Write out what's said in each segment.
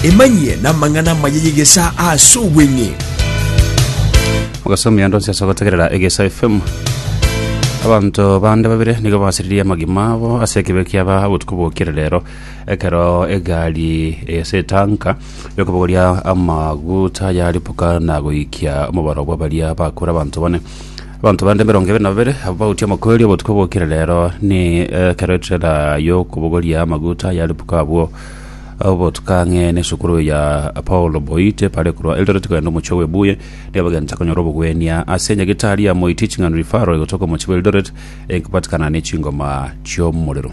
Emanyie namang'ana amaya y'egesaa ase obweng'e. Mogaso omuya ndonsi ase ogotegerera egesa fm abanto bande babere nigo basiririe amagima abo ase ekibe kiaba obotuko bwokire rero ekero egari ase etanka yokobogoria amaguta yaripuka na goikia omobaro bwa baria bakure abanto bane Abanto bande emerongo ebere na babere abwo bagotia omokweri obotuko bwokire rero ni ekero etrela y'okobogoria amaguta yaribuka abwo obotuko ang'e n'esukuru ya Paulo Boite bare korwa Eldoret kogenda omochie Webuye nigo bagenta konyora obogwenia ase enyagetari ya Moi Teaching and Referral egotoka omochie bwa Eldoret enkobatikana ne chingoma chi'omorero.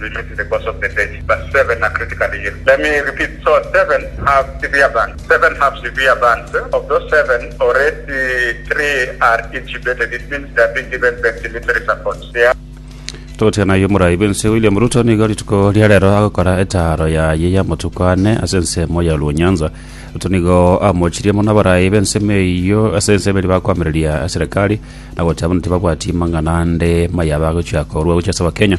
Release the course of the day verse 7 na critically here let me repeat so seven have severe burns seven have severe burns of those seven already three are intubated it means they are being given ventilator support they are Togotiga naye omorai bw'ense William Ruto nigo rituko ria rero agokora etaaro yaye ya amatuko ane ase ensemo ya Luo Nyanza. Ruto nigo amochirie mono abarai b'ensemo eyio ase ensemo eria bakoamereria serikali na gocha buna tibabwati mang'ana ande maya bagochia korwa gochia ase Abakenya.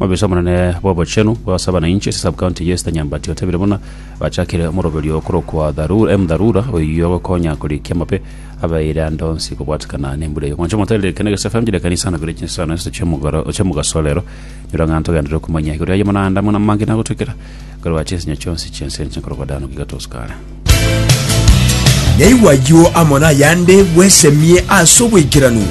Omobisa omonene bw'obochenu bw'abasabana inche ase subcounty ya Eastern Nyambati otebire buna bachakire omoroberio okorokwa Dharu- M. Dharura oyio ogokonya korikia amape abeire ande onsi kobwatekana nembura eye. Mwancha omotere reka negesa FM chire ekanisa anabere chinsano isatu chi'omogoro- chi'omogaso rero nyora ng'a ntogenderere komanya igoro yaye buna ande amo namange nagotwekera Korwa chinsinyo chionsi chi'ense enchene korokwa Dani goika Tosukara. Naigwa ayio amo nayande bwesemie ase oboikeranu.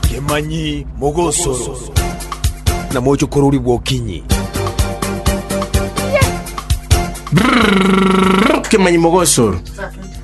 Kemanyi mogosoro. Na moche korori bwokinyi. Kemanyi mogosoro.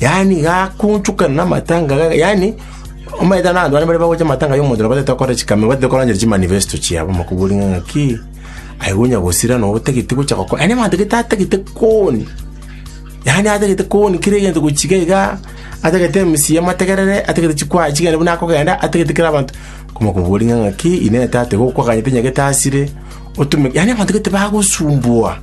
yaani gakunchukana na matanga ga- yaani omaete na abanto bane bare bagocha matanga ya omonto na batete gokora chikamero batete koranchera chimanifesto chiabo makobori ng'a ng'aki aye gonya gosira na otagete gocha gokora yaani abanto gete atagete koni yaani atagete koni kera egento gochiga iga atagete emisia amategerere atagete chikwa chigende buna akogenda atagete kera abanto komakobori ng'a ng'aki inee tata igo okwaganyete nyagete asire otume yaani abanto gete bagosumbua